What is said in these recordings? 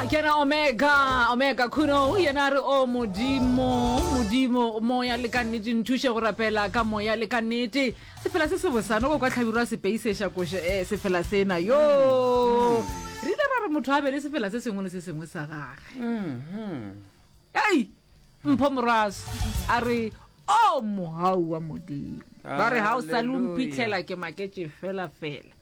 a kena omega omega khuno o yena re o modimo modimo moya le ka nnete nthuše go rapela ka moya le ka nnete sefela se se bosano ko kwa tlhabirwa sepeisesha koše um eh, sefela sena yo mm. re ile ra re motho a be le sefela se sengwe le se sengwe sa gage mm-hmm. ei mpho morwaso a re o oh, mogau wa modimo ba re ga o sa le mphitlhela ke maketse fela fela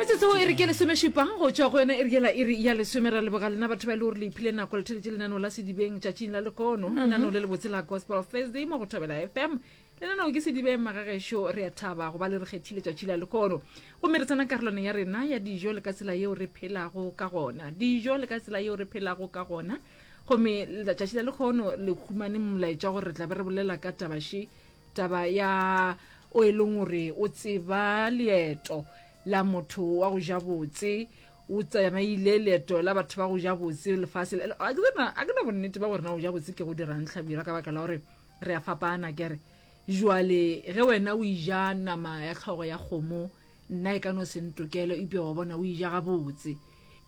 metsotso e re ke lesomešupa go tšwa go yona e re ke la iri ya lesome ra leboga lena batho ba e le gore le iphile nako le theletše lenaneo la sedibeng tšatšing la lekono mhm. lenaneo le le botse la gospel thursday mo go thobela fm lenaneo ke sedibeng magagešo re a thaba go ba le re kgethile tšatši la lekono gomme re tsena karolwane ya rena ya dijo le ka tsela yeo re phelago ka gona dijo le ka tsela yeo re phelago ka gona gomme tšatši la lekgono le humane molaetša gore re tla be re bolela ka tabaše taba ya o e leng gore o tseba leeto la motho wa go ja botse o tsamaile leeto la batho ba go ja botse lefase a ke na bonnete ba gore na go ja botse ke go dirang tlhabira ka baka la gore re a fapana kere jwale ge wena o ija nama ya tlhogo ya kgomo nna e ka no se ntokelo ipea wa bona o ija gabotse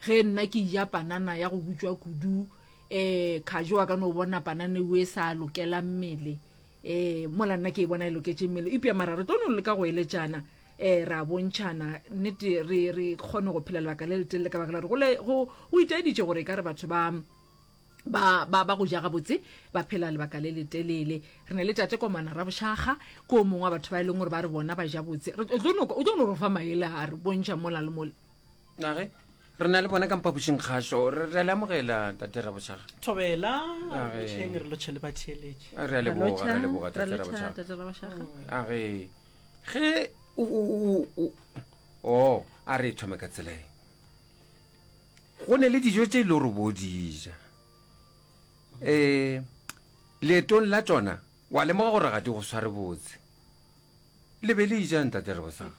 ge nna ke ija panana ya go butswa kudu um kgajo wa ka no bona panana eo e sa lokela mmele ee mola nna ke e bona e loketše mmele ipja mara re tlo no leka go eletšana um ra bontšhana nnete re re kgone go phela lebaka le letelele ka baka la gore go itaeditše gore e ka re batho ba ba ba ba go ja gabotse ba phela lebaka le letelele re ne le tate komana ra bošaga ko o mongwe wa batho ba e leng gore ba re bona ba ja botse o tlo no re fa maele a re bontšha mola le mole age re na le bona ka mpapušing kgašo re a le amogela tate rabošaga thobela botlheng re lotšhe le batheeletše re a leboga re a leboga tate rabošaga age ge o a re thome ka tsela e go ne le dijo tse e le gore bo dija um leetong la tsona Wa lemoga gore ga di go sware botse. Le be le ijang, Tate Rebosaga?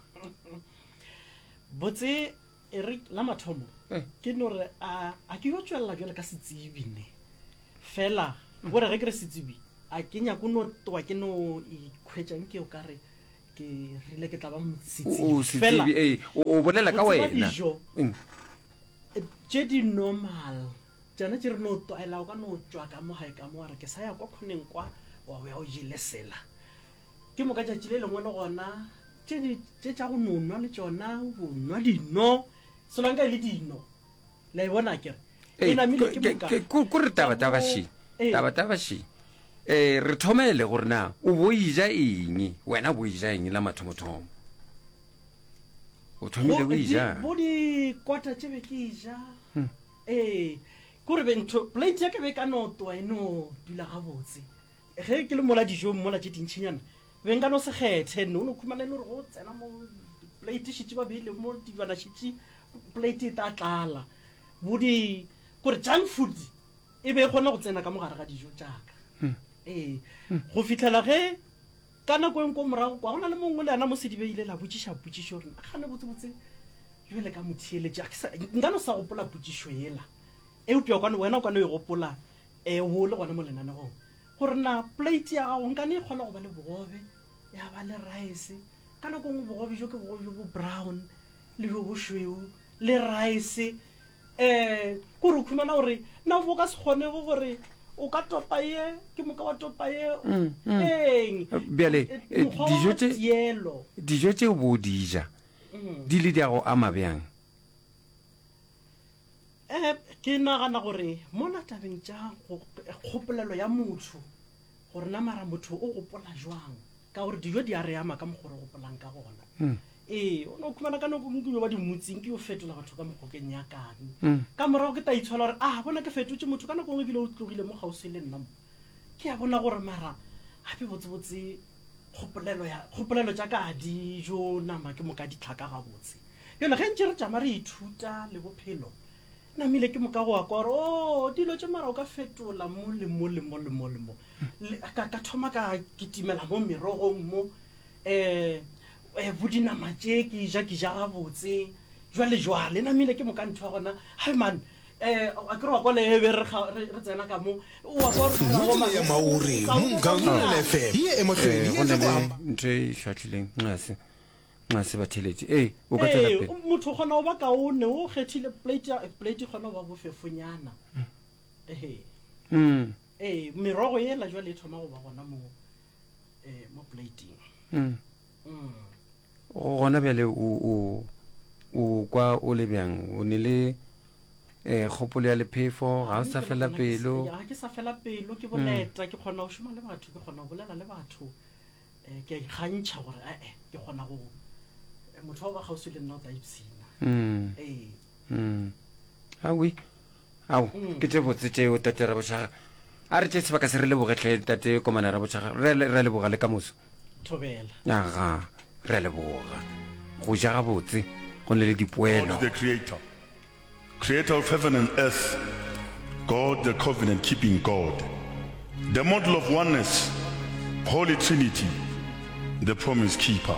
Botse, e re, la mathomo, ke no re, A, a ke yo tšwelela bjalo ka setsebi ne? Fela, gore ge ke re setsebi, a ke nyake o no twa ke no ikhwetša nke o ka re ke rile ke tla ba setsebi. O setsebi, ee, o bolela ka wena. O tseba dijo tše di normal. Tšona tše re no tlwaela, o ka no tšwa ka mo gae ka mo wa re, Ke sa ya kwa khoneng kwa, wa o ya o jele sela. Ke moka tšatši le lengwe le gona tše di, tše tša go no nwa le tšona, o bo nwa dino, solanka e le dino. Le a e bona akere? Ee, E namile ke ke- moka. ke- ko- ko re taba Ka taba mo- še Ee. taba taba še um re thomele gore na o bo eja eng wena o bo eja eng la mathomothomo o thomile o Bo- di- ejang Bo dikota tše be ke e ja. Ee, ke gore be ntho plate ya ka be ka no twa e no dula gabotse. Ge ke le mola dijong mola tše dintšhinyana be nka no se kgethe nne o no khumana e le gore go tsena mo plate šitše ba beile mo dilwana šitše plate e tla tlala bo di kore junk food e be e kgona go tsena ka mogare ga dijo tšaka ee go fitlhela ge Ka nako e nko morago kwa, go na le mongwe le yena mo sedibe ile la botšiša potšišo gore, Nagane botsebotse bjo le ka mo theeletša. Nka no sa gopola potšišo yela, eupša kwano wena o ka no e gopola um o le gona mo lenanegong, gore na plate ya gago nka no e kgolwa go ba le bogobe, ya ba le rice. Ka nako e nngwe bogobe bjo ke bogobe bjo bo brown, le bjo bošweu, le rice. um ko re khumana gore na bo ka se kgonego gore o ka topa ye ke moka wa topa ye mm, mm. eng bjale eh, eh, dijo tse dijo tse o bo di ja mm. di le di a go ama bjang um ke nagana gore mo natabeng tša kgopolelo ya motho gore na mara motho o gopola jwang ka gore dijo di a re ama ka mokgore o gopolang ka gona Ee, o no khumana ka noko Modimo ba di motsing ke yo fetola batho ka mogokeng ya kang. Mm. Ka morago ke ta itshola gore ah bona ke fetotše motho ka nako ngwe ebile o tlogile mo kgauswi le nna mo. Ke ya bona gore mara gape botsebotse kgopolelo ya kgopolelo tša ka a di jo nama ke moka di tlhaka gabotse. Bjale ge ntše re tšama re ithuta le bophelo namile ke moka go wa kwa gore o oh, dilo tše mara o ka fetola mo le mo le mo le mo le mo. Ka thoma ka kitimela mo merogong mo um Eh, bo dinama tše ke e ja ke ja gabotse jwale jwale namile ke moka ntho ya gona hai man eh, a ke re wa kwa leebe re kga- re re tsena ka mo wa kwa re kgona go ma- ya maori Sa- mo sa- gaulele fm ye e mohlodi Eh, go e na le tla ntho e hlatlhileng nxase nxase batheletše ee o ka tswela Ee, pele motho o kgona go ba kaone o kgethile plate ya- plate e kgona go ba bofefonyana Ehe. Mm. ee merogo ela jwale e thoma go ba gona moo gona bjale o kwa o le bjang o ne le um kgopolo ya lephefo ga o sa fela pelo ga ke sa fela pelo ke boleta ke kgona go šoma le batho ke kgona go bolela le batho um ke a ikgantšha gore ee ke kgona go motho wa ba kgauswi le nna o tla ipshina ee awi ao ke tše botse tšeo tate rabošaga a re tše sebaka se re lebogetlhe tate komana rabošaga re a leboga le ka moso thobela aga re a leboga go ja ga botse go ne le dipoelo the creator creator of heaven and earth god the covenant keeping god the model of oneness holy trinity the promise keeper